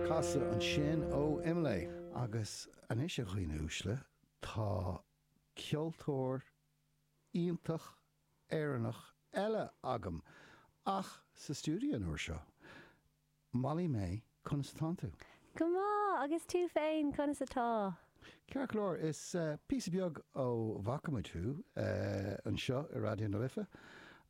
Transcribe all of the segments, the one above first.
Casadh ansin ó Imlé. Agus anois, a dhaoine uaisle, tá ceoltóir iontach Éireannach eile agam, ach sa stiúideo an uair seo. Molly-Mae, conas atánn tú? Go maith, agus tú féin, conas atá? Ceart go leor, is píosa beag ó bhfaca muid thú anseo i Raidió na Life,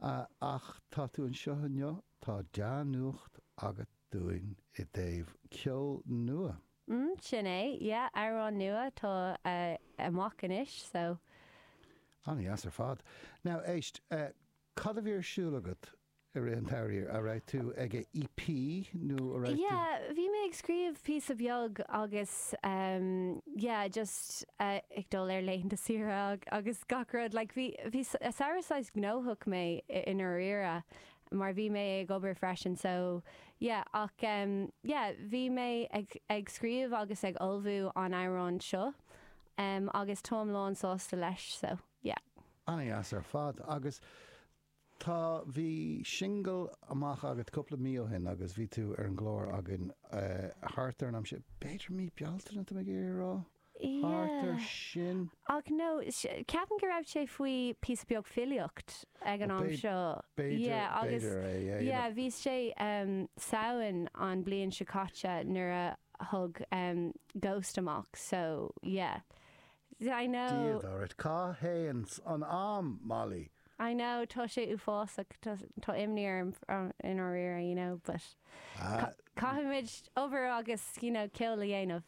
ach tá tú anseo inniu Tá dea-nuacht agat dúinn i dtaobh ceoil nua. Mm, sin é, yeah, amhrán nua atá amach anois, so. Ana-dheas ar fad. Now, éist, cad a bhí ar siúl agat i rith an tsamhraidh? A' raibh tú ag a' EP nó a' raibh tú. Yeah, bhí mé ag scríobh píosa bheag agus ehm yeah just ag dul ar laethanta saoire agus gach rud like bhí, bhí samhradh saghas gnóthach é i ndáiríre. mar bhí mé ag obair freisin so yeah ach em yeah bhí mé ag ag scríobh agus ag ullmhú an amhrán seo em agus táim lán sásta leis so yeah. Ana dheas ar fad agus tá bhí singil amach agat cúpla mí ó shin agus bhí tú ar an gclár againn eh thart ar an am sin, b'fhéidir mí Bealtaine tá mé ag iarraidh a rá? thart air sin. Ach nó, ceapaim go raibh sé faoi píosa beag filíocht ag an am seo. B'fhéidir, b'fhéidir é, yeah. Yeah, bhí sé Samhain an bliain seo caite nuair a tháinig Ghost amach, so yeah. I know. Dia duit, cá théann an am, Molly? I know, tá sé uafásach, tá imní orm i ndáiríre, you know, but caithfimid obair agus, you know, ceol a dhéanamh.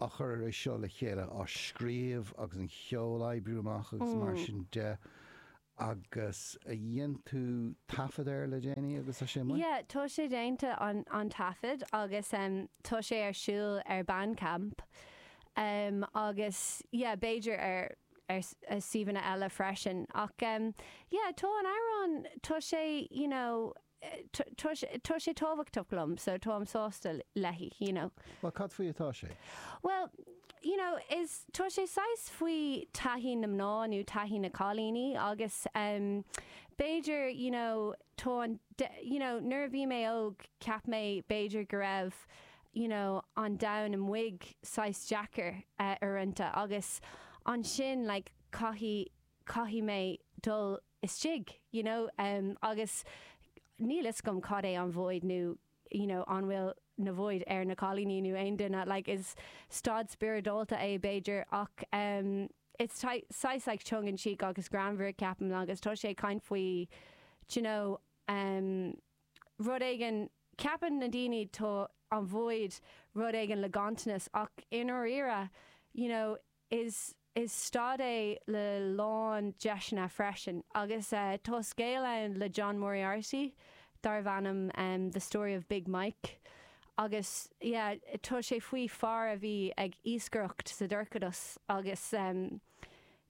ag cur é seo le chéile, á scríobh agus an cheol a oibriú amach agus mar sin de agus dhein tú taifead air le déanaí agus tá sé amuigh? Yeah, tá sé déanta an an taifead agus tá sé ar siúl ar Bandcamp agus yeah b'fhéidir ar ar suíomhanna eile freisin ach yeah tá an amhrán, tá sé you know, tá sé tábhachtach liom so táim sásta leis, you know. Bhuel, cad faoi atá sé? Bhuel, you know, is, tá sé saghas faoi taithí na mná nó taithí na cailíní agus ehm, b'fhéidir, you know, tá an, you know, nuair a bhí mé óg cheap mé b'fhéidir go raibh, you know, an domhan amuig saghas deacair, eh, uaireanta agus ansin like caithfidh, caithfidh mé dul isteach, you know, agus níl 'fhios agam cad é an void nó, you know, an bhfuil an void ar na cailíní nó aon duine, like is staid spioradálta é b'fhéidir ach ehm it's saghas like tongue in cheek agus greannmhar ceapaim agus tá sé ag caint faoi d'you know ehm rud éigin, ceapann na daoine tá an void rud éigin le gantanas ach i ndáiríre, you know, Is is staid é le lán deiseanna freisin agus tá scéal ann le John Moriarty darbh ainm The Story of Big Mike agus yeah tá sé faoi fear a bhí ag iascaireacht sa dorchadas agus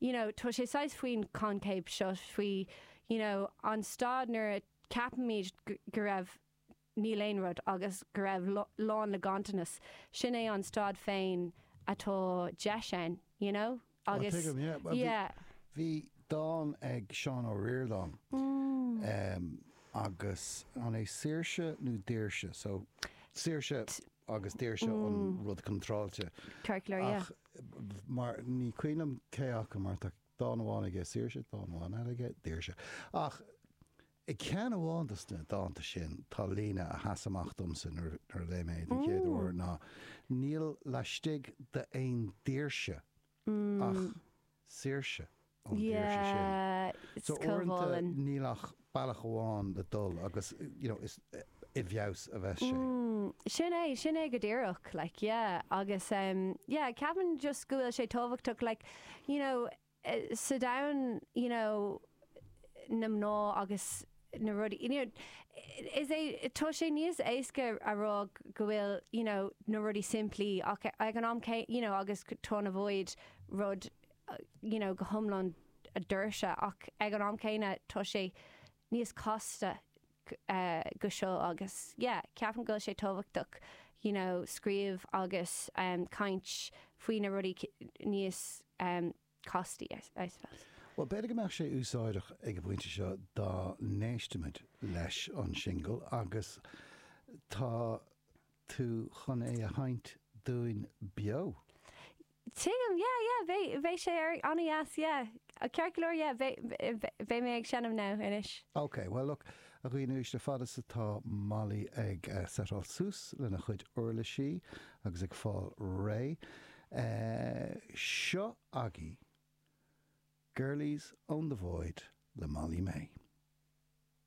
you know tá sé saghas faoin concept seo faoi you know an staid nuair a ceapaimid go raibh níl aon rud, agus go raibh lán le gantanas, sin é an staid féin atá deis ann, you know? Á, Agus, tuigim, yeah. Bhí, yeah. bhí dán ag Seán Ó Ríordáin, em, agus an é Saoirse nó Daoirse? So, Saoirse agus Daoirse an rud contráilte. Circular, yeah. Ach, mar, ní cuimhin liom cé acu, mar tá dán amháin aige Saoirse, dán amháin eile aige Daoirse. Ach, I gceann amháin de na dánta sin tá líne a sheas amach domsa nuair a léigh mé é den chéad uair ná níl laistigh d'aon daoirse ach saoirse ón daoirse sin. So uaireanta níl ach bealach amháin le dul agus you know is i bhfeabhas a bheas sé. Sin é, sin é go díreach like yeah agus yeah ceapaim just go bhfuil sé tábhachtach like you know, sa domhan you know na mná agus na rudaí you know is é tá sé níos éasca a rá go bhfuil you know na rudaí simplí ach ag an am céanna you know agus tá an void rud you know go hiomlán daoirse ach ag an am céanna tá sé níos casta ná seo agus yeah ceapaim go bhfuil sé tábhachtach you know scríobh agus caint faoi na rudaí níos castaí I suppose. Bhuel b'fhéidir go mbeadh sé úsáideach ag an bpointe seo dá n-éistimid leis an singil agus tá tú chun é a sheinnt dúinn beo? Tuigim, yeah, yeah, bheidh, bheidh sé ar, an-dheas, yeah, ceart go leor, yeah, bheidh, bheidh, bheidh mé ag seinm now, anois. OK, well, look, a dhaoine, anois a fhad 's atá Molly ag setáil suas lena cuid uirlisí agus ag fáil réidh, seo agaibh Girlies own the Void le Molly-Mae.